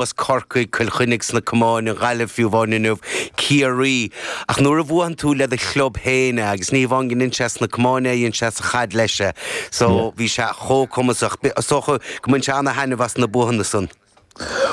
As Corcaigh, Cill Chainnigh sna camáin, an Ghaillimh fiú amháin inniu, Ciarraí. Ach nuair a bhuann tú le do chlub féin é, agus ní hamháin go ndein sé sna camáin é, dhein sé sa chaid leis é, so bhí sé chomh cumasach. Is dócha go mbain sé ana-thaitneamh as na buathanna san.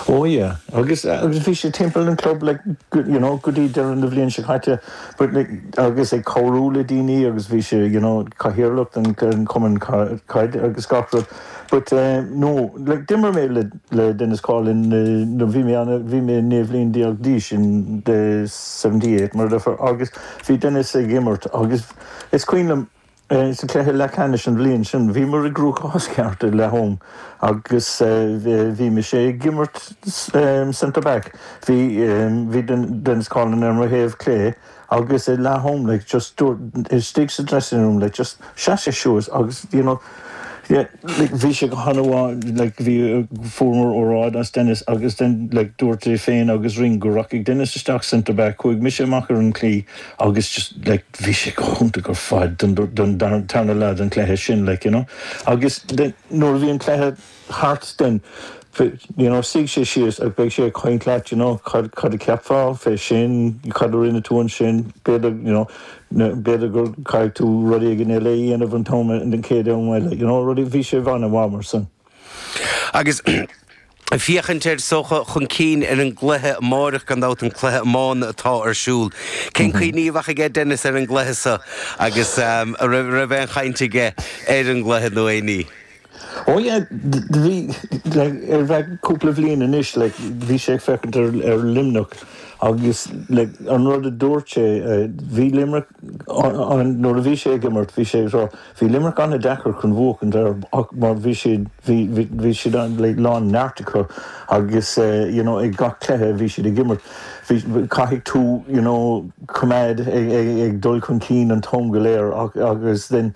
Ó yeah, agus bhí sé timpeall an chlub like you know go dtí deireadh na bhliain seo caite but like agus ag cabhrú le daoine agus bhí sé you know cathaoirleach den chumann caide agus gach rud. But eh, no, like d'imir mé le le Dennis Coughlan eh, no bhí mé ana, bhí mé naoi bliana déag d'aois in the seventy eight mar adeirfear agus bhí Dennis ag imirt agus is cuimhin liom eh, sa cluiche leathcheannais an bhliain sin bhíomar i gcruachás ceart i Lahoam agus eh, eh, bhí mise ag imirt eh, centre back bhí eh, bhí Den- Dennis Coughlan ar mo thaobh clé agus ag leath-am like just dúirt istigh sa dressing room like just sheas sé suas agus you know yeah like bhí sé go han-mhaith like bhí fuaireamar óráid as Dennis agus then like dúirt é féin agus Ring go rachadh Dennis isteach centre back chuaigh mise amach ar an chlaí agus just like bhí sé go hiontach ar fad don don tarna leath den chluiche sin like you know agus then nuair a bhí an cluiche thart then you know suigh sé síos agus beidh sé ag caint leat you know cad cad a cheapfá fé sin cad a rinne tú ansin b'fhéidir you know na b'fhéidir gur caithfidh tú rud éigin eile a dhéanamh an t-am an den chéad am eile you know rudaí bhí sé an-mhaith mar san Agus ag féachaint ar so chu chun cinn ar an gcluiche amárach gan dabht an cluiche iomána atá ar siúl cén tuairim a bheadh aige Dennis ar an gcluiche sa agus a raibh raibh aon chaint aige ar an gcluiche nó aon ní. Ó yeah, bhí, like, ar feadh cúpla bhliain anois, like, bhí sé ag féachaint ar, ar Luimneach agus, like, an rud a dúirt sé, eh, bhí Limerick, an, an, nuair a bhí sé ag imirt, bhí sé ag rá, bhí Limerick an-deacair chun bhuachaint ar, ach mar bhí siad, bhí, bhí, bhí siad an, like, a lán neart acu agus, eh, you know, ag gach cluiche a bhí siad ag imirt, bhí, caithfidh tú, you know, coimeád ag, ag, ag dul chun cinn an t-am go léir ach, agus then,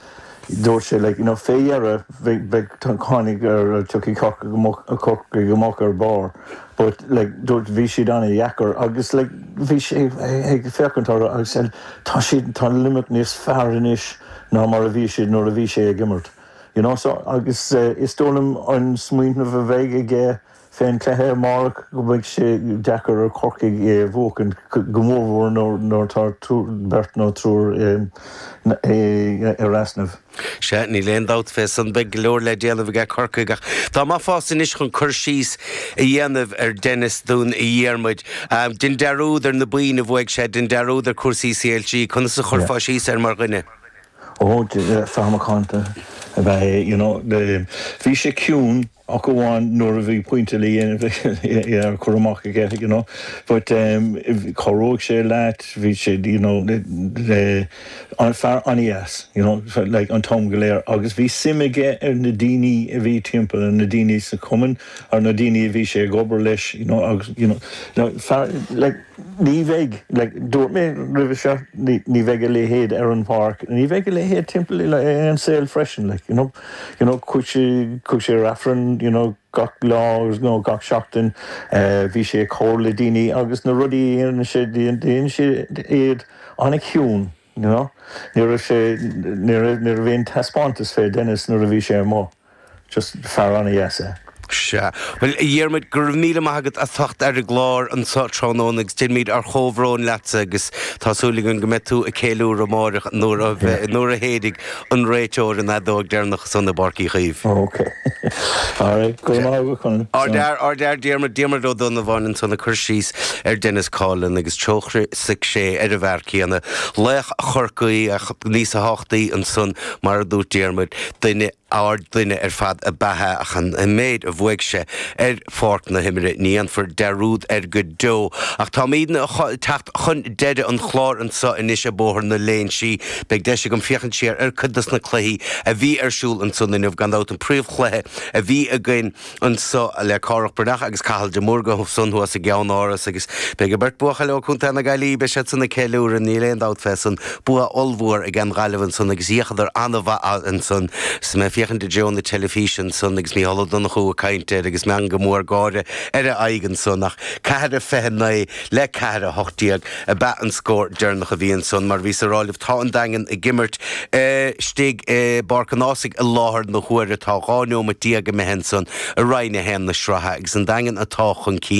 Dúirt sé, like, you know, fé dheireadh, bheidh, bheidh, tháinig ar, tiocfaidh Corcaigh, Corcaigh amach ar barr but, like, dúirt, bhí siad an-deacair agus, like, bhí sé ag féachaint air agus said, tá siad, tá an Luimneach níos fearr anois ná mar a bhí siad nuair a bhí sé ag imirt. You know, so, agus is dóigh liom an smaoineamh a bheidh aige, Fé an cluiche amárach go mbeidh sé deacair ar Chorcaigh é a bhuachaint, go mórmhór nuair atá beirt nó triúr ar easnamh. Sea, níl aon dabht fé san, beidh go leor le déanamh aige Corcaigh ach dá mbeifeása anois chun cur síos a dhéanamh ar Denis dúinn a Dhiarmaid. Dein dearúd ar na boinn a bhuaigh sé, dein dearúd ar chúrsaí CLG, conas a chuirfeá síos air mar dhuine? Ó, fear macánta ab ea é, you know. Bhí sé ciúin. ach amháin nuair a bhí pointe le dhéanamh ar chur amach aige you know but em cabhródh sé leat bhí sé you know fear an-deas you know fe- like an t-am go léir agus bhí suim aige ar na daoine a bhí timpeall ar na daoine sa chumann ar na daoine a bhí sé ag obair leis you know agus you know le fear like Ní bheidh, dúirt mé roimhe seo, ní bheidh a leithéid ar an páirc, ní bheidh a leithéid timpeall i an saol freisin. Chuaigh sé ar Aifreann gach lá gach seachtain, bhí sé ag comhrá le daoine agus na rudaí a dhéanann sé, dhéanann sé iad an-chiúin. you know. Ní raibh sé, ní raibh, ní raibh aon taispeántas fé Dennis nuair a bhí sé amuigh, just fear an-deas é. Sea. Bhuel, a Dhiarmaid, go raibh míle maith agat as theacht ar an gclár anseo tráthnóna agus déanaimid ár gcomhbhrón leatsa agus tá súil againn go mbeidh tú ag céiliúradh amáireach nuair a Yeah. bheidh, nuair a shéid. An réiteoir an fheadóg deireanach ansan i bPáirc Uí Chaoimh. Ok. Alright. Go raibh maith agat, Conor. Ár bhfear, ár bhfear Diarmuid, Diarmuid Ó Donnabháin ansan ag cur síos ar Dennis Coughlan agus tuigse aige ar an bhfear céanna, laoch Chorcaí ach níos tábhachtaí ansan mar a dúirt Diarmuid, duine, ard-duine ar fad ab ea é ach an méid a bhuaigh sé ar pháirc na himeartha, ní dhéanfar dearúd air go deo. Ach táimidne ag teacht chun deireadh an chláir anseo anois i Bóthar na Laoi. Beidh deis againn féachaint siar ar cuid dos na cluichí a bhí ar siúl ansan inniu. Gan dabht an príomh chluiche a bhí againn anso le Cárthach Bán Breathnach agus Cathal Ó Mórdha ansan thuas i gCeannáras agus beidh an beirt buachaill ó Co. na Gaillimhe, beidh siad san ag ceiliúradh, níl aon dabht fé san. Bua ollmhór ag An Ghaillimh ansan agus d'fhéachadar ana-mhaith ansan. 'S mé ag féachaint i dtreo na teilifíse ansan agus Micheál Ó Donnchú ag caint ar agus meangadh mór gáire ar a aghaidh ansan ach ceathair a fiche a naoi le ceathair a hocht déag ab ea an scór deireanach a bhí ansan mar bhíos a rá libh tá an Daingean ag imirt istigh i bPáirc an Ághasaigh i láthair na huaire tá dhá neomat déag imithe ansan i Roinn a haon na sraithe agus an Daingean atá chun cinn